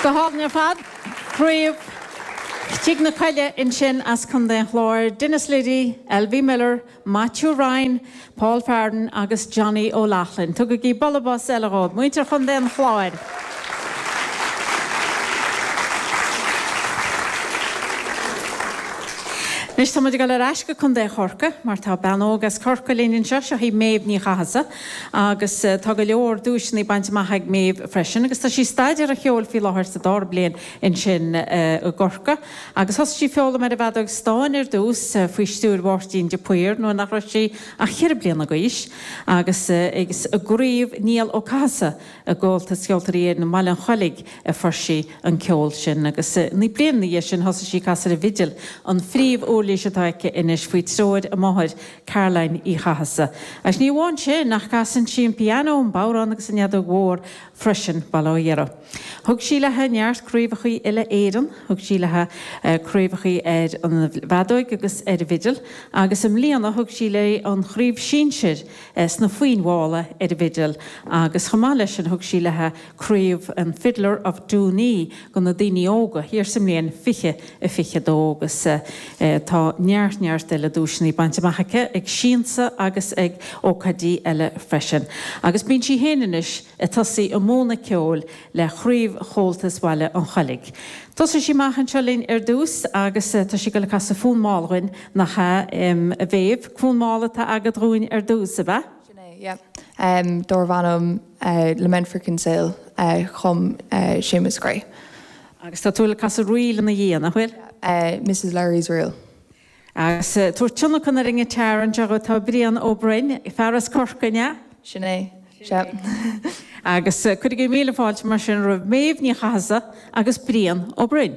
Go hálainn ar fad. Craobh Tigh na Coille ansin as Contae an Chláir, Denis Liddy, Elvie Miller, Maitiú Ryan, Paul Farden agus Johnny O'Loughlin. Tugaigí bualadh bos eile dhóibh, muintir Chontae an Chláir. Anois tá muid ag dul ar ais go Contae Chorcaigh mar tá bean óg as Corcaigh linn anseo, seo í Méabh Ní Chathasaigh agus tá go leor duaiseanna bainte amach ag Méabh freisin agus tá sí ag staidéar an cheoil faoi láthair sa dara bliain ansin i gCorcaigh agus thosaigh sí ag foghlaim ar an bhfeadóig stáin ar dtús faoi stiúir Mháirtín de Paor nuair nach raibh sí ach ceithre bliana d'aois agus is i gCraobh Niall Ó Cathasaigh De Chomhaltas Ceoltóirí Éireann i mBaile an Chollaigh a fuair sí an ceol sin agus naoi mbliana ina dhiaidh sin thosaigh sí ag casadh ar an bhfidil, an phríomh-uirlís atá aici anois, faoi treoir a máthair, Caroline Uí Chathasa. Agus ní amháin sin ach casann sí an pianó, an bodhrán agus an fheadóg mhór freisin, bail ó Dhia uirthi. Thug sí léi neart craobhacha uile-Éireann, thug sí léi craobhacha ar an bhfeadóig agus ar an bhfidil agus i mbliana thug sí léi an chraobh sinsir, sna foinn mhalla ar an bhfidil agus chomh maith leis sin thug sí léithi craobh an Fiddler of Dooney go na daoine óga thiar sa mbliain fiche a fiche dó agus tá neart neart eile duaiseanna bainte amach aici ag Siansa agus ag ócáidí eile freisin agus bíonn sí féin anois ag tosaí ag múineadh ceoil le Craobh Chomhaltas Bhaile an Chollaigh. Tosóidh sí amach anseo linn ar dtús agus tá sí ag dul ag casadh fonn mall dhuinn. Nach ea, a Mhéabh? Fonn mall atá agat dhúinn ar dtús, ab ea? Sin é, yep. Dárbh ainm Lament for Kinsale a chum Séamus Creagh. Agus tá tú le casadh ríl ina dhiaidh, nach bhfuil? Mrs. Lowry's Reel. Agus ar tionlacan ar an ngiotar anseo agat, tá Brian Ó Broin, fear as Corcaigh, an ea? Sin é, sea. Agus cuirigí míle fáilte, mar sin, roimh Méabh Ní Chathasaigh agus Brian Ó Broin.